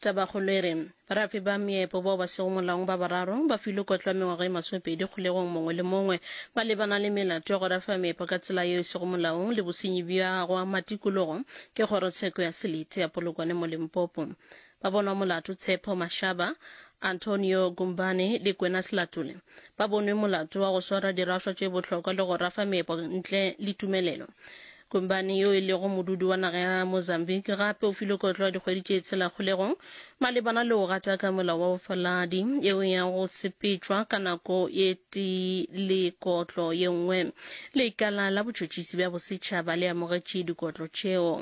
Tabakgolo e re, Barapi ba meepo bao ba sego molaong ba bararo ba filwe kotlo ya mengwaga e masopedi kgolegong mongwe le mongwe. Ba lebana le melato ya go rafa meepo ka tsela yeo e sego molaong le bosenyi bja gwa matikologo ke Kgorotsheko ya Selete ya Polokwane mo Limpopo. Ba bonwa molato Tshepo Mashaba, Antonio Gumbane le Kwenas Latule. Ba bonwe molato wa go swara diraswa tše bohlokwa le go rafa meepo ntle le tumelelo. Kumbani yo e lego modudi wa naga ya Mozambique gape o filwe kotlo ya dikgwedi tše tshela kgolegong malebana le go gata ka molao wa bofaladi yeo ya go sepetšwa ka nako ye tee le kotlo ye nngwe. Lekala la botšhotšhisi bja bosetšhaba le amogetše dikotlo tšeo.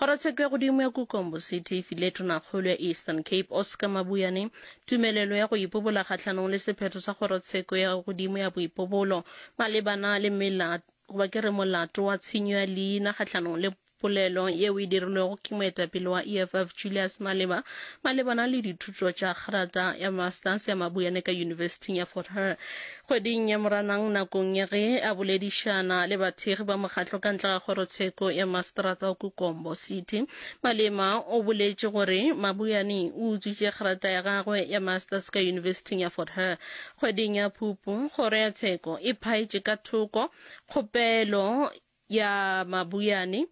Kgorotsheko ya godimo ya Kukombo City e file tonakgolo ya Eastern Cape, Oscar Mabuyane, tumelelo ya go ipobola kgahlanong le sephetho sa kgorotsheko ya godimo ya boipobolo malebana le mela goba ke re molato wa tshenyo ya leina kgahlanong le polelo yeo e dirilwego ke moetapele wa EFF Julius Malema malebana le dithuto tša kgerata ya Masters ya Mabuyane ka Yunibesithing ya Fort Hare. Kgweding ya Moranang nakong ya ge a boledišana le bathekgi ba mokgatlo ka ntle ga kgorotsheko ya Maseterata o Kukombo City, Malema o boletše gore Mabuyane o utswitše kgerata ya gagwe ya Masters ka Yunibesithing ya Fort Hare. Kgweding ya Phupu, kgoro ya tsheko e phaetše ka thoko kgopelo ya Mabuyane.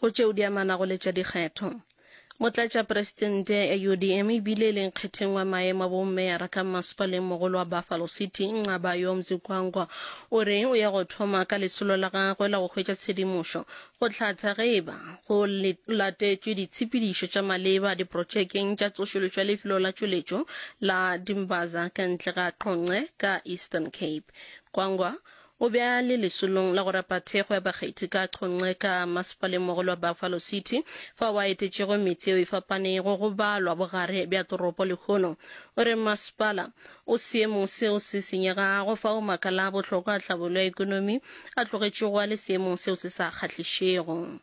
Go tšeo di amanago le tša dikgetho, Motlatšaperesitente ya UDM e bile e leng kgetheng wa maemo a bomeyara ka mmasepalengmogolo wa Buffalo City, Nqaba Yomzi Gwangwa, o re o ya go thoma ka lesolo la gagwe la go hwetša tshedimošo go hlatha ge e ba go latetšwe ditshepedišo tša maleba diprotšekeng tša tsošološo ya lefelo la tšweletšo la Dimbaza ka ntle ga Qonce ka Eastern Cape. Gwangwa O be a le lesolong la go rapa thekgo ya bakgethi ka Chonce ka masepalengmogolo wa Buffalo City, fao a etetšego metse yeo e fapanego go balwa bogare bja toropo lehono. O re masepala o seemong seo se senyegago, fao makala a bohlokwa a tlhabolo ya ekonomi a tlogetšego a le seemong seo se sa kgahlišego.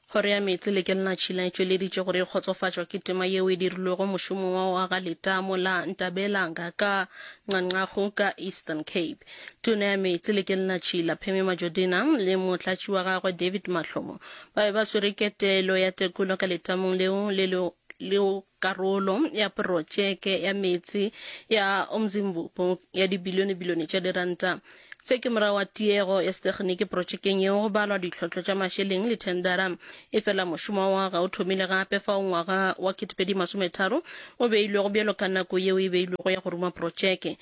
Kgoro ya Meetse le Kelna Tšhila e tšweleditše gore e kgotsofatšwa ke tema yeo e dirilwego mošomong wa go aga letamo la Ntabelanga ka Nqanqago ka Eastern Cape. Tona ya Meetse le Kelna Tšhila, Pheme Majodina, le motlatši wa gagwe, David Mahlomo, ba be ba swere ketelo ya tekolo ka letamong leo le lego Karolo ya protšeke ya meetse ya Umzimvubu ya dibilione-bilione tša diranta. Se ke morago ga tiego ya setekgeniki protšekeng yeo go balwa ditlhohlo tša mašeleng le thendara. Efela mošomo wa go aga o thomile gape fao ngwaga wa 2030 o beilwego bjalo ka nako yeo e beilwego ya go ruma protšeke.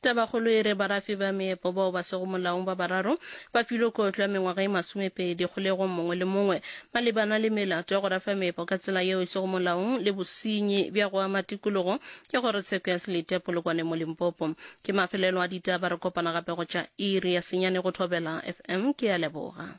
Tabakgolo e re barafi ba meepo bao ba sego molaong ba bararo ba filwe kotlo ya mengwaga e masomepedi kgolegong mongwe le mongwe malebana le melato ya go rafa meepo ka tsela yeo e sego molaong le bosenyi bja go ama tikologo ke kgorotsheko ya Selete Polokwane mo Limpopo. Ke mafelelo a ditaba re kopana gape go tša iri ya senyane go Thobela FM. Ke a leboga.